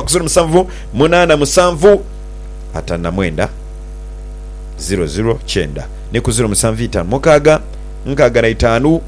Ziro musanvu munaana musanvu ataanu na mwenda ziro ziro kyenda ni ku ziro musanvu itaanu mukaaga nkaaga na itaanu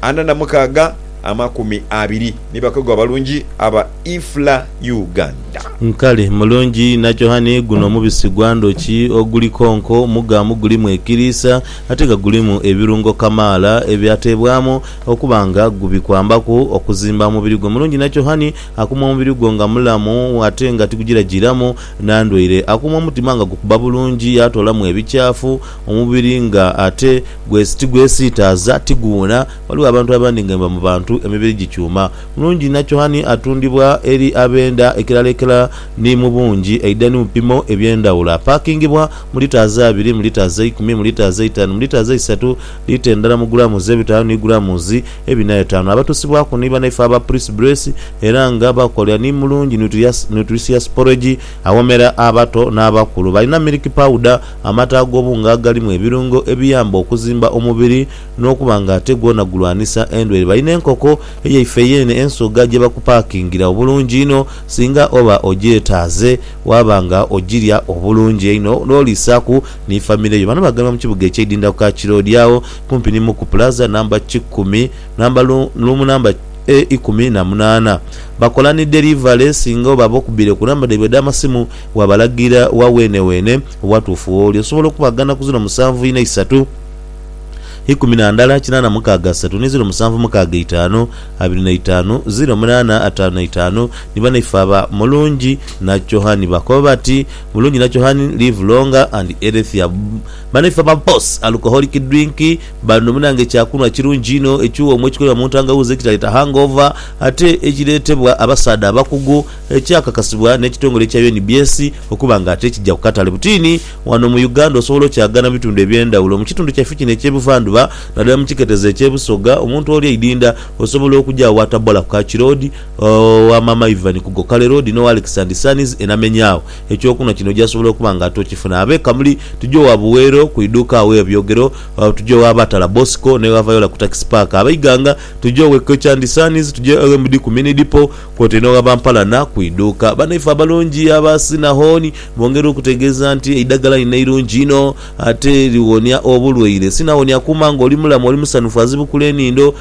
ana na mukaaga amakumi abiri ni bakozi abalungi aba IFLA Uganda. Nkali, mulungi inha kyohani guno mubisi gwa ndhoki oguli konko mugamu gulimu ekiriisa ate nga gulimu ebirungo kamaala ebyateebwamu okuba nga gubikwambaku okuzimba omubiri gwo mulungi inha kyohani Akuuma omubiri gwo nga mulamu ate nga tigugiragiramu na ndwaire. Akuuma omutima nga gukuba bulungi yaatoolamu ebikyafu, omubiri nga ate tigwesiitaaza, tiguwuna. Ghaligho abantu abandi nga bwebaba mu bantu emibiri gikyuma. Mulungi inha cohani atundibwa eri ab'enda ekirala ekirala ni mu bungi aidha ni mu bipimo eby'endhawulo. Apaakingibwa mu litres abiri, mu litres eikumi, mu litres eitaanu, mu litres eisatu lita endala mu gulaamuzi ebitaanu ni gulaamuzi ebina etaanu. Abatusibwaku ni banaife aba Pris Brace era nga bakolera ni Mulungi Nutricious Porridge aghomera abato n'abakulu. Balina milk powder, amata ag'obunga agalimu ebirungo ebiyamba okuzimba omubiri n'okuba nga ate gwona gulwanisa endwaire. Balina enkoko eyaife yeene ensoga gye bakupakingira obulungi inho singa oba ogyetaaze waaba nga ogirya obulungi einho n'oliisaaku ni famire yo. Bano baghalibwa mu kibuga ekye Idinda ku Kaki Road agho kumpi ni Muku Plaza namba kikumi namba luumu namba e ikumi na munaana. Bakola ni derivale singa oba abokubire ku namba dhaibwe edha masimu wabalagira wa weene weene obwatuufu wooli. Osobola okubagana ku ziro musanvu ina isatu ikumi na ndala kinaana mukaaga asatu ni ziro musanvu mukaaga itaanu abiri na itaanu ziro munaana ataanu na itaanu ni banaife aba Mulungi na Johani bakoba bati. Mulungi na Chohani live longer and healthier bano ife aba boss alcoholic drink bano munange kyakunwa kirungi inho ekiwoomu ekikolebwa muntangawuuzi ekitaleta hangover ate ekiretebwa abasaadha abakugu ekyakakasibwa nekitongole ekya UNBS okuba nga ate kija kukatale butiini wano mu Uganda osobola okyagana mubitundu ebyendawulo mukitundu kyaife kino ekyebuvandhuba nadala mukiketezo ekyebusoga omuntu oli eidinda osobola okuja awo atabola ku kakiroodi Owa Maama Ivan ku Gokale Road n'owa Alex and Sons e Namenyaagho. Eky'okunhwa kino oja sobola okuba nga ate okifuna. Ab'e Kamuli tuje owa Buweero ku iduuka awo e Byogero, tuje owa Batala Bosco n'ewa Viola ku Takisi Paaka. Ab'e Iganga tuje owa Equity and Sons, tuje owa MD ku Mini Dipo kwotaire n'owa ba Mpalana ku iduuka. Bannaife abalungi aba Sinahon bongera okutegeeza nti eidhagala lino eirungi inho ate liwonia obulwaire. Sinahon akuuma ng'oli mulamu, oli musanhufu, azibukula enindo,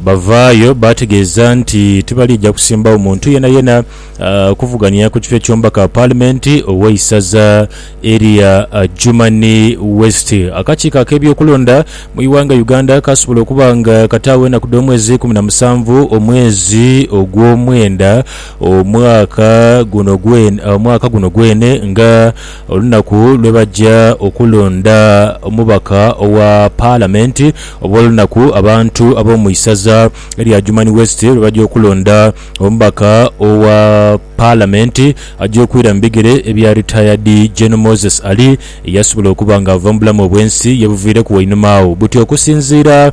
Bavaayo baategeeza nti tibaliija kusimbagho muntu yenayena kuvuganya ku kifo eky'omubaka Paalimenti ow'eisaza erya Adjumani West. Akakiiko ak'ebyokulonda mu ighanga Uganda kaasobola okuba nga kataagho enaku dh'omwezi ikumi na musanvu omwezi ogw'omwenda omwaka guno gwene nga Olunaku lwe baja okulonda omubaka owa Palamenti obw'olunaku abantu ab'omu isaza lya Adjumani West lwe baja okulonda omubaka owa Palamenti aja okwira mu bigere bya Retired Gen Moses Ali eyasobola okuba nga ava mu bulamu obw'ensi yebuviireku wainuma agho buti okusinziira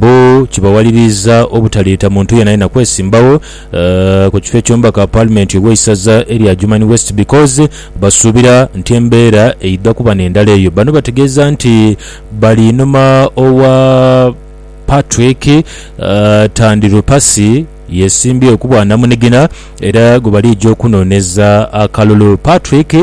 Bo kibawaliriza obutaleeta muntu yeenayeena kwesimbagho ku kifo eky'omubaka wa Paalimenti ow'eisaza erya Adjumani West because basuubira nti embeera eidha kuba n'endala eyo. Bano bategeeza nti bali inhuma owa Patrick Tandilupasi. Yesimbye okuba namunigina era gwebalija okunoneza akalulu. Patrick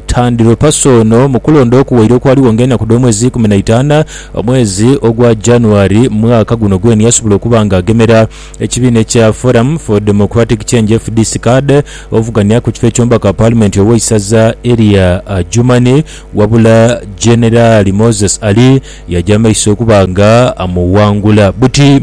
Tandilopasa ono mukulonda okuwaire okwaligho nga enaku dhomwezi ikumi naitana omwezi ogwa January mwaka guno gwene yasobola okuba nga agemera ekibiina ekya Forum for Democratic Change, fdc, card ovugania kukifo ekyomubaka palimenti oweisaza elya Adjumani wabula Generali Moses Ali yaja maiso okuba nga amuwangula. Buti.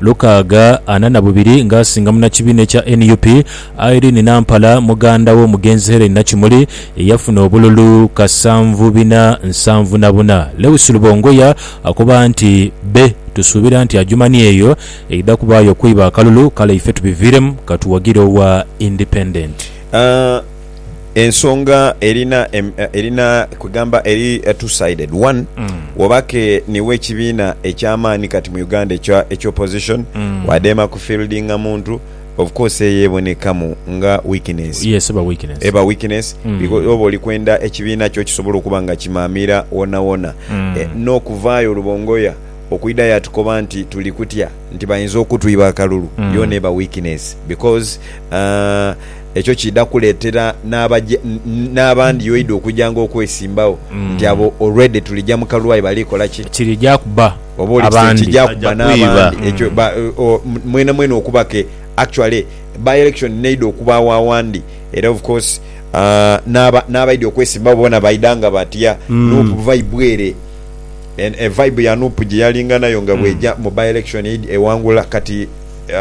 lukaaga ana na bubiri nga asinga munakibiina ekya nup, Irene Nampala muganda w'omugenzi Hellen Nakimuli eyafuna obululu kasanvu bina nsanvu na buna. Lewis Lubongoya akoba nti, Bbe tusuubira nti Adjumani eyo eidha kubaayo okweiba akalulu kale ife tubiviiremu katuwagire owa Independent. ensonga erina em- eh, erina kwegamba eri a two sided one woba ke niwe ekibiina ekyamaani kati mu uganda ekya ekya opposition wadeema ku fieldinga muntu of course eyo ebonekamu nga weakness yes eba weakness eba weakness because oba oli kwenda ekibiina kyo kisobola okuba nga kimaamira wonawona Eh, n'okuvaayo olubongoya okwida yatukoba nti tuli kutya nti bayinza okutwiba akalulu yoona eba weakness because ah, Ekyo kiidha kuleetera n'abaja n'abandi oidha okujanga okwesimbagho nti abo already tulija mu kalwayi bali kola ki? Kirija kuba Oba oli kise abandi. kija Baja kuba kwiba. n'abandi. Ekyo ba o mwenamwena okuba ke actually by-election n'eidha okubaagho awandi era of course aah n'aba n'abaidha okwesimbagho boona baidha nga batya Nup vibe ere. En e vibe ya Nup gye yalinga nayo nga bw'eja mu by-election ewangula kati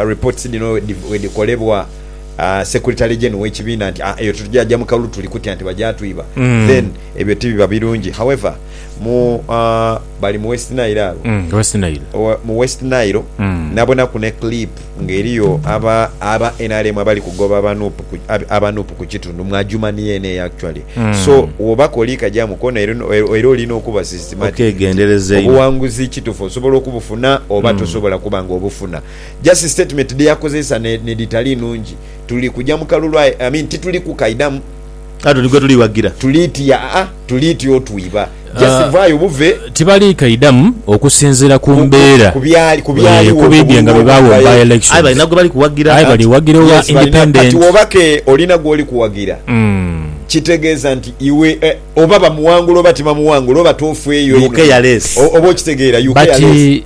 reports dhino bwedhikolebwa, Secretary General w'ekibiina nti eyo tetugya gya mu kalulu tuli kutya nti bagya twiba then ebyo tibiba birungi however mu bali mu West Nile agho mu West Nile nabonaku ne clip nga eriyo aba nrm abali kugoba aba Nup ku kitundu mu Adjumani yeene eyo actually so woba koli kagyamu koona era olina okuba systematic nti obuwanguzi kitufu osobola okubufuna oba tosobola kuba nga obufuna. Just statement dheyakozesa nedhitali nungi. Tuli kuja mu kalulu aye I mean tituli kukaidhamu. Aye tuli gwetuli wagira. Tuli ti aa tuli ti otwiba. Just vaayo buve. Tibali kaidhamu okusinzira ku mbeera eeh kubidhie nga bwe baagho mu by elections. Aye balina gwebali kuwagira. Aye bali wagira owa independent. Kati woba ke olina gwoli kuwagira kitegeeza nti iwe oba bamuwangula oba tibamuwangula oba toofweeyo inho oba okitegeera you care less.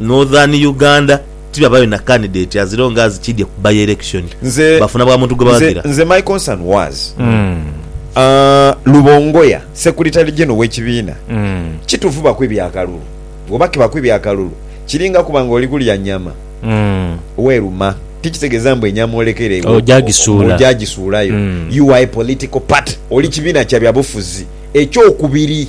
Northern Uganda tibabayo na candidate azireo nga azikidye ku by election Nze bafuna bwa muntu nze gwebawagira. nze my concern was aah Lubongoya secretary general wekibiina kitufu baku ebya kalulu bwoba kibaku ebya kalulu kiringa kuba nga oli kulya nyama weluma tikitegeza mbu enyama olekera ewo Oja o- gisuula. oja gisuulayo Mm. you are a political party oli kibiina kya byabufuzi ekyokubiri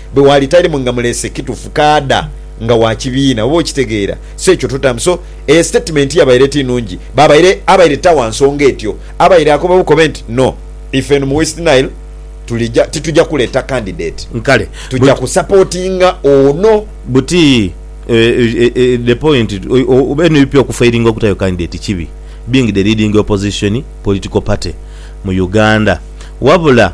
Bwe waali talimu nga mulese, kitufu kaadha nga wa kibiina. Oba okitegeera? So ekyo tutamu. So, eyo sitatimenti yabaire eti nungi. Baabaire, abaire ta wa nsonga etyo. Abaire akoba bukobe nti, No, ife eno mu West Nile tulija, tituja kuleeta kandideti. Kale. Tuja But. kusapootinga ono. Buti, the point, eno ipi okufailinga okutayo kandideti kibi, being the leading opposition political party mu Uganda. Wabula.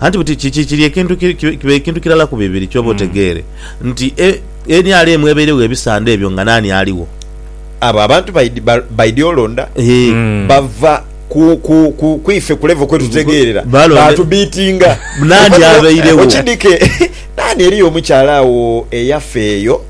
Anti buti kiki kiri ekintu kiba ekintu kirala ku bibiri ky'oba otegeere nti eni ali emu ebairegho ebisande ebyo nga naani aligho. Abo abantu baidhi olonda bava ku ife ku levo kwe tutegeerera baatubiitinga naani abairegho. Okidhike naani eriyo omukyala agho eyafa eyo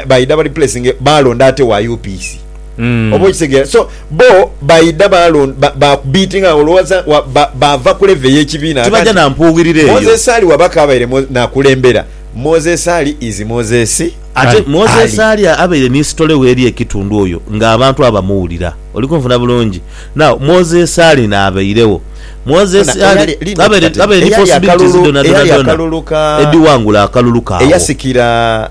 baidha baripulesinge baalonda ate wa UPC. Mm. oba okitegeera so bo baidha balon- ba- bakubiitinga nga olowooza wa- ba- baava ku levo ey'ekibiina Tibaja Kakati, na mpuughiriro eyo. moses ali waba kaabaire Mo- nakulembera moses ali is moses Ate Ali. Moses Ali. ali abaire ni sitole we eri ekitundu oyo nga abantu abamuwulira. Oli kunfuna bulungi? Now, Moses Ali naabairewo. Moses Funa, Ali eyali- lino abaire kati, abaire ni eyali possibilities akalulu- dhona dhona eyali dhona akalulu ka- edhiwangula akalulu kaagho. eyasikira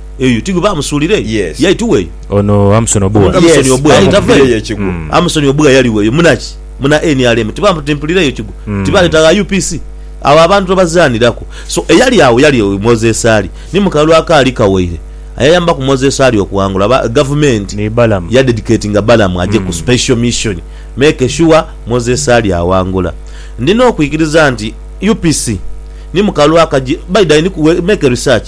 Eyo ti gwe baamusuulira eyo? Yes. Yaita weeyo. Ono Amson Obua. Amson Yes, Obua yaita bamumugire veeyo. yo ekigwo. Mm. Amson Obua yali weeyo. Munaki? Muna nrm. Tibaamu ti mpulira eyo kigwo? Mm. Tibaleeta gha UPC? Agho abantu tobazaaniraku. So eyali agho yali Moses Ali. Ni mu kalulu akaali kawaire ayayambaku Moses Ali okuwangula aba, Gavumenti Ni Balaam. yadedicatinga Balaam aje ku special mission make sure Moses Ali awangula. Ndina okwikiriza nti UPC ni mu kalulu akaji, by the way, ni ku, we, make research.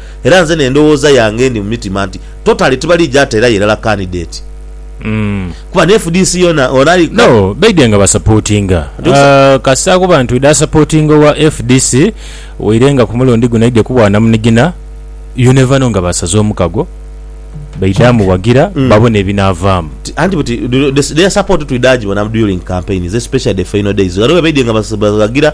Era nze n'endhoghoza yange endi mu mitima nti totale tibaliija teerayo irala kandideeti kuba ni fdc yoona ono ali No, baidhe nga basapotinga kasita akuba nti oidha sapotinga owa fdc waire nga ku mulundi guno aidhye ku bwanamunigina you never know nga baasaze omukago baidha muwagira babone ebinaavaamu. Anti buti their support twidha gibona during campaigns especially the final days ghano bwebaidhye nga bawagira.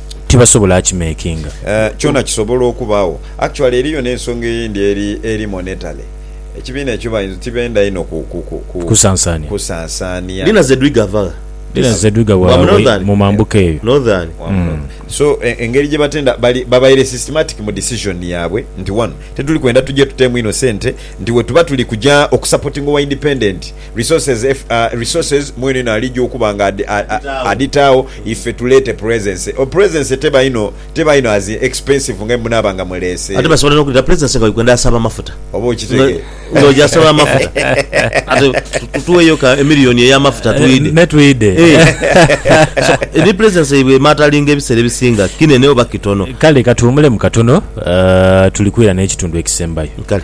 tibasobola akimekinga. Eeh kyona kisobola okubagho. Actually eriyo nensonga eyindi eri eri monetally ekibiina ekyo bayinza tibenda inho ku ku ku ku Kusansania. kusansania. Lina Zedwig ava gha? Lina Zedwig awa Wa mu Northern? mu mambuka eyo. Northern. Wa mu Northern. So engeri gyebatenda bali babaire systematic mu decision yabwe nti wano tetuli kwenda tuje tuteemu inho sente nti wetuba tuli kuja oku supportinga owa independent Resources resources mweneno alija okuba nga adhitaagho ife tuleete presence. O presence teba inho teba inho as in expensive nga bwemunaaba nga muleese. Ate basobola n'okuleeta presence nga Uganda asaba amafuta. Oba okitegera. Nga oja asaba amafuta. Ate tugheyo ka emillion ey'amafuta twidhe. Me twidhe. So ni presence yaibwe emaatalinga ebiseera ebisinga kinene oba kitono. Kale katuwumulemu katono tuli kwira n'ekitundu ekisembayo. Kale.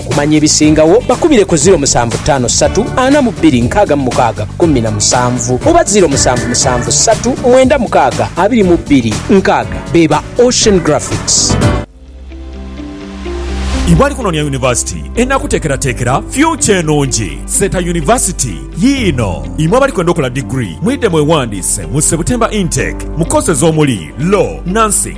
Okumanya ebisingagho bakubire ku ziro musanvu ttaano ssatu ana mu bbiri nkaaga mu mukaaga kkumi na musanvu oba ziro musanvu musanvu ssatu mwenda mukaaga abiri mu bbiri nkaaga be ba Ocean Graphics. Iwe ali kunoonia yunivasiti enakuteekerateekera fyukya enungi, Seeta University yiino. Imwe abali kwenda okola diguli, mwidhe mwewandiise mu September Intake mu courses omuli, Law, Nursing,